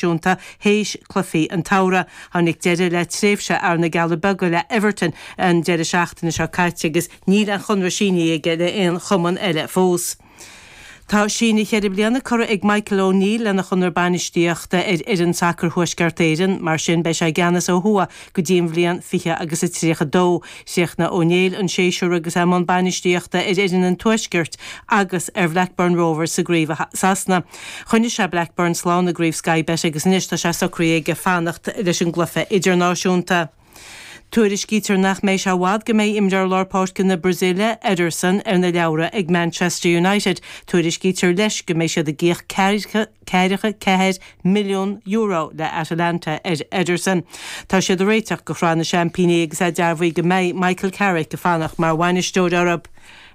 náisiúnta théis cluichí an tsamhraidh. Tháinig deireadh le tréimhse fhear na gCealla Beaga le Everton an deireadh seachtaine seo caite agus níl aon chonradh sínithe aige le aon chumann eile fós. Tá síneadh cheithre bliana curtha ag Michael O'Neill lena chonradh bainistíochta ar fhoireann sacair Thuaisceart Éireann, mar sin beidh sé i gceannas ó thuaidh go dtí an bhliain fiche agus a tríocha dó. Chríochnaigh O'Neill an séasúr agus é i mbun bainistíochta ar fhoireann an Tuaiscirt agus ar Bhlackburn Rovers sa gcraobh i Sasana. Choinnigh sé Blackburn slán i gCraobh Sky Bet agus anois tá sé socraithe aige fanacht leis an gcluiche idirnáisiúnta. Tuairiscítear nach mbeidh sé i bhfad go mbeidh imreoir lár páirce na Brasíle, Ederson, ar na leabhra ag Manchester United. Tuairiscítear leis go mbeidh siad ag íoc ceathracha ceathair milliún euro le Atalanta ar Ederson. Tá siad ag réiteach do Shraith na Seaimpíní agus é dearbhaithe go mbeidh Michael Carrick ag fanacht mar bhainisteoir orthu.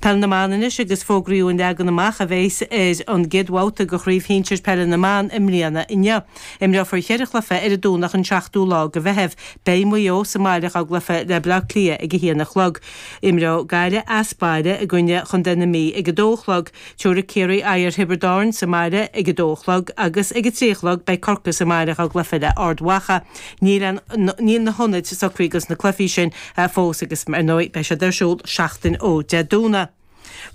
Peil na mBan anois agus fógraíodh an leagan amach a bheas ar an gcéad bhabhta de Chraobh Shinsir Peile na mBan i mbliana inniu. Imreofar ceithre chluiche ar an Domhnach an 7ú lá de Mheitheamh. Beidh Maigh Eo sa mbaile dhá gcluiche le Bleá Cliath ag a haon a chlog. Imreoidh Gaillimh as baile i gcoinne Chontae na Mí ag a dó a chlog. Tabharfaidh Ciarraí aghaidh ar Thiobraid Árann sa mbaile ag a dó a chlog agus ag a trí a chlog beidh Corcaigh sa mbaile dhá gcluiche le Ard Mhacha níl na hionaid socraithe do na cluichí sin fós agus ar ndóigh beidh siad ar siúl seachtain ó Dé Domhnaigh.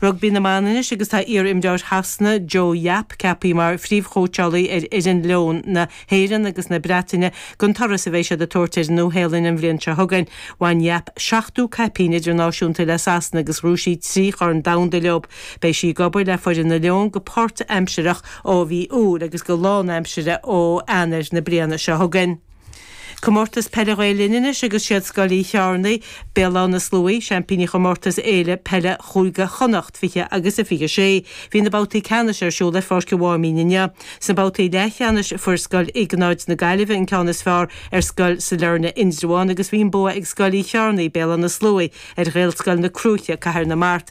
Rugbaí na mBan anois agus tá iar imreoir Shasana Jo Yapp ceapaithe mar phríomhchóitseálaí ar fhoireann Leoin na hÉireann agus na Breataine don turas a bheidh siad ag tabhairt ar an Nua Shéalainn an bhliain seo chugainn. Bhain Yapp seachtó caipín idirnáisiúnta le Sasana agus ghnóthaigh sí trí Chorn Domhanda leo. Beidh sí ag obair le foireann na Leon go páirt-aimsireach ó mhí Iúil agus go lánaimsire ó Eanair na bliana seo chugainn. Comórtas Peile Ghael Linn anois agus siad Scoil Uí Cheárnaigh, Béal Átha na Sluaighe, seaimpíní chomórtas Fhéile Peile Chúige Chonnacht 20 agus a 26. Bhí na babhtaí ceannais ar siúl ar Pháirc an Mháimín inniu. Sna babhtaí leathcheannais fuair Scoil Iognáid na Gaillimhe an ceann is fearr ar Scoil Sailearna Indreabhán agus bhí an bua ag Scoil Uí Cheárnaigh, Béal Átha na Sluaighe, ar Ghaelscoil na Cruaiche, Cathair na Mart.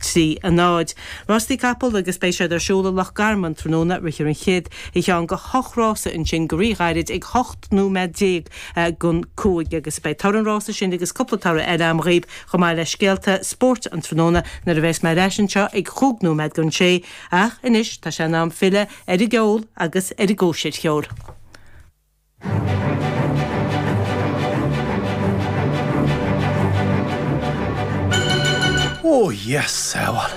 3, a náid. Rástaí capall agus beidh siad ar siúl i Loch Garman tráthnóna rithfear an chéad cheann de hocht rása ansin go rí-ghairid ag hocht nóiméad déag don cúig agus beidh toradh an rása sin agus cúpla toradh eile agam dhaoibh chomh maith le scéalta spóirt an tráthnóna nuair a bheas mé ar ais anseo ag chúig nóiméad don sé ach anois tá sé in am filleadh ar an gceol agus ar an gcóisir cheoil. Ó, Dhia sábháil!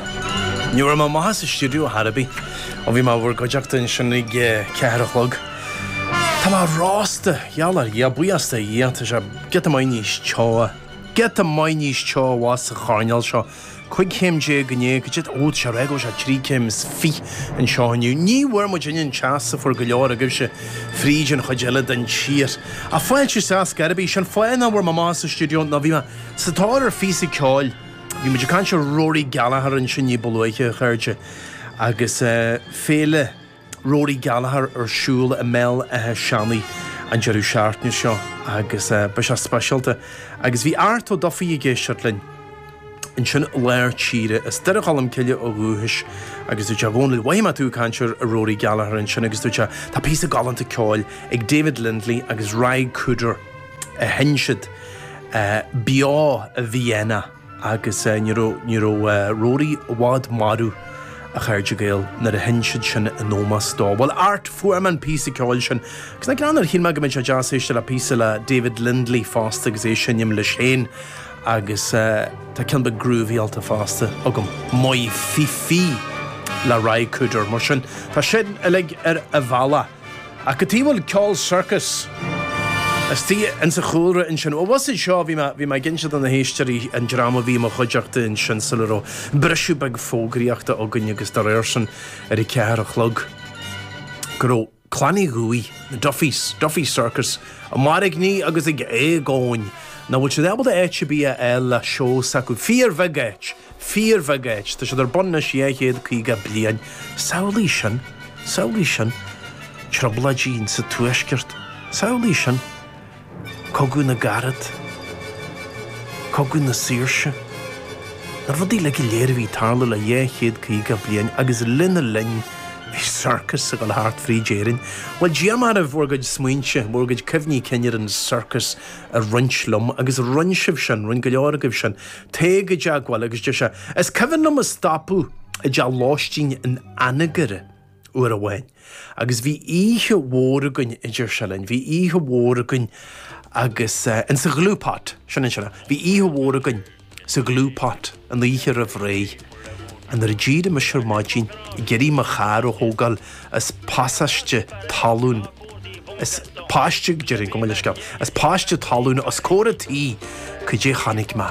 Ní raibh mé amach as an stiúideo ar chor ar bith ó bhí mé in bhur gcuideachta ansin ag a ceathair a chlog. Tá mé rósta, gheall ar Dhia, buíochas do Dhia, tá sé giota maith níos teo, giota maith níos teo i bhfad sa choirnéal seo. 15 chéim déag, níl, cad é a d'fhág sé ar aghaidh, sé 23 céim anseo inniu. Ní bhfuair muid ionann teas a fuair go leor agaibhse fríd an chuid eile den tír. Ach fáilte roimh theas ar bith. Sin fáth nach bhfuair mé amach as an stiúideo nó bhí mé sa tóir ar phíosa ceoil. Bhí muid ag caint ar Rory Gallagher ansin ní ba luaithe, a chairde, agus féile. Rory Gallagher ar siúl i mBéal Átha Seanaidh an deireadh seachtaine seo agus beidh sé speisialta agus bhí Art Ó Dufaigh ag éisteacht linn ansin i lár tíre, as Doire Cholm Cille ó dhúchais agus dúirt sé Dhomhnaill mhothaigh mé tú ag caint ar Rory Gallagher ansin agus dúirt sé tá píosa galánta ceoil ag David Lindley agus Ry Cooder a sheinn siad beo i Vienna. Agus ní raibh, ní raibh Rory i bhfad marbh, a chairde Gael, nuair a sheinn siad sin in ómos dó. Bhuel, Art, fuair mé an píosa ceoil sin. Agus ansin shíl mé go mbeadh sé deas éisteacht le píosa le David Lindley fosta agus é a seinm leis féin. Agus tá ceann beag groovyálta fosta agam, My Fifi le Ry Cooder. Mar sin, tá sin uilig ar an bhalla. Ach cad chuige a bhfuil ceol circus istigh ins an chúlra ansin. Bhuel, bhuel, seo é, bhí mé, bhí mé ag inse do na héisteoirí an dream a bhí i mo chuideachta ansin sula raibh briseadh beag fógraíochta againn agus dá réir sin ar a ceathair a chlog go raibh Clann Uí Dhufaigh, na Duffys, Duffy's Circus, ag mairgní agus ag éagaoin nach bhfuil siad ábalta áit ar bith a fháil le seó s'acu. Fíorbheagán áit. Fíorbheagán áit. Tá siad ar bun anois dhá chéad caoga bliain. Samhlaigh sin. Samhlaigh sin. Trioblóidí sa Tuaisceart. Samhlaigh sin. Cogadh na gCarad. Cogadh na Saoirse. Na rudaí uilig go léir a bhí ag tarlú le dhá chéad caoga bliain agus lena linn bhí circus ag dul thart fríd Éirinn. Bhuel, d'iarr mé oraibh bhur gcuid smaointe, bhur gcuid cuimhní cinn ar an circus a roinnt liom agus rinne sibh sin, rinne go leor agaibh sin. Téigh i dteagmháil agus deir sé, Is cuimhin liom ag stopadh i dteach lóistín in Anagaire uair amháin agus bhí oíche mhór againn, a deir sé linn. Bhí oíche mhór againn agus eh, in sa Glue Pot, sin an sea, bhí oíche mhór againn sa Glue Pot an oíche roimh ré. Nuair a d'éirigh mise ar maidin ag iarraidh mo charr a thógáil as pasáiste talún, as paiste, gabh mo leithscéal, as paiste talún os comhair an tí, cad é chonaic mé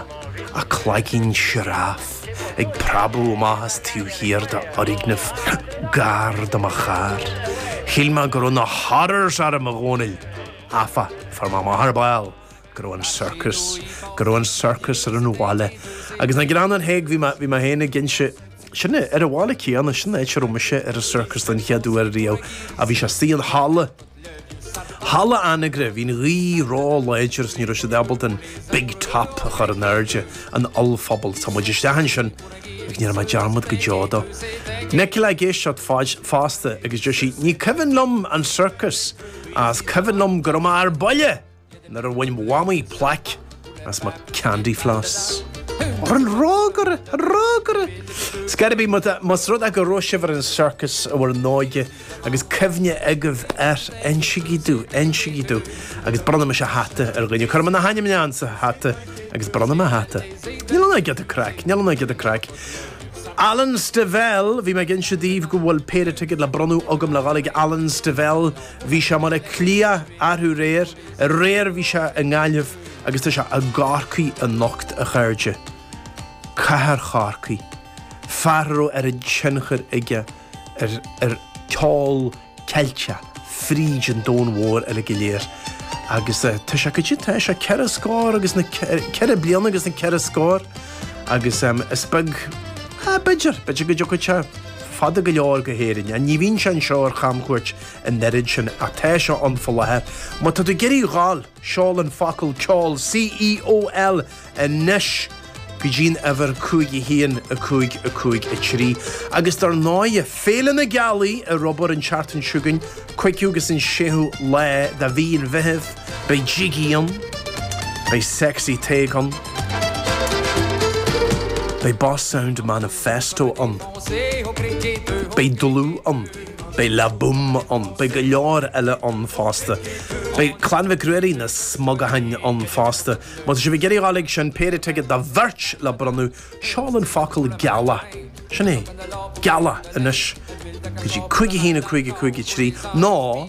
ach cloigín sioráif ag preabadh amach ó thaobh thiar de fhoirgneamh gar do mo charr. Shíl mé go raibh na horrors orm, a Dhomhnaill! Áfach, fuair mé amach ar ball, go raibh an circus, go raibh an circus ar an bhaile agus na greannáin théigh bhí mé, bhí mé féin ag inse, sin é, ar an bhaile céanna, sin áit a raibh mise ar an circus den chéad uair riamh a bhí sé istigh in halla, halla Anagaire, bhí an ghaoth ró-láidir is ní raibh siad ábalta an big top a chur in airde, an ollphuball, tá muid isteach ansin agus ní dhéanfaidh mé dearmad go deo dó. Nicole ag éisteacht fosta agus deir sí ní cuimhin liom an circus ach is cuimhin liom go raibh mé ar buile! Nuair a bhain Mhamaí plaic as mo candy floss. Ar an rógaire! Ar an rógaire! Ar scor ar bith, más rud é go raibh sibh ar an circus i bhur n-óige agus cuimhne agaibh air, insígí domh, insígí domh. Agus bronnfaidh mise hata ar dhuine. Cuirfidh mé na hainmneacha ann sa hata agus bronnfaidh mé hata. Níl ann ach giota craic, níl ann ach giota craic. Alan Stivell, bhí mé ag inse daoibh go bhfuil péire ticéad le bronnadh agam le ghabháil chuig Alan Stivell. Bhí sé i mBaile Átha Cliath arú aréir, aréir bhí sé i nGaillimh agus tá sé i gCorcaigh anocht, a chairde. Cathair Chorcaí, fear a raibh oiread tionchair aige ar ceol Ceilteach fríd an domhan mhór uilig go léir. Agus tá sé go dtí, tá, is é ceithre scór agus na, ceithre bliana agus na ceithre scór agus is beag, b'fhéidir, b'fhéidir go dtiocfaidh sé, fada go leor go hÉirinn. Ní bhíonn sé anseo ar chamchuairt an oiread sin ach tá sé ann faoi láthair. Má tá tú ag iarraidh a ghabháil, seol an focal ceol, C-E-O-L, anois go dtí an uimhir 51553. Agus dár ndóighe, Féile na Gealaí ar obair an tseachtain seo chugainn, 5ú agus an 6ú lá de mhí an Mheithimh. Beidh Jiggy ann, beidh Sexy Tadhg ann, beidh Boss Sound Manifesto ann, beidh Dlúth ann, beidh La Boum ann, beidh go leor eile ann fosta. Beidh Clann Mhic Ruairí, na Smugaithin, ann fosta. Má tá sibh ag iarraidh ghabháil chuig sin péire ticéad do bheirt le bronnadh, seol an focal gealach, sin é, gealach, anois go dtí cúig a haon a cúig a cúig a trí, nó.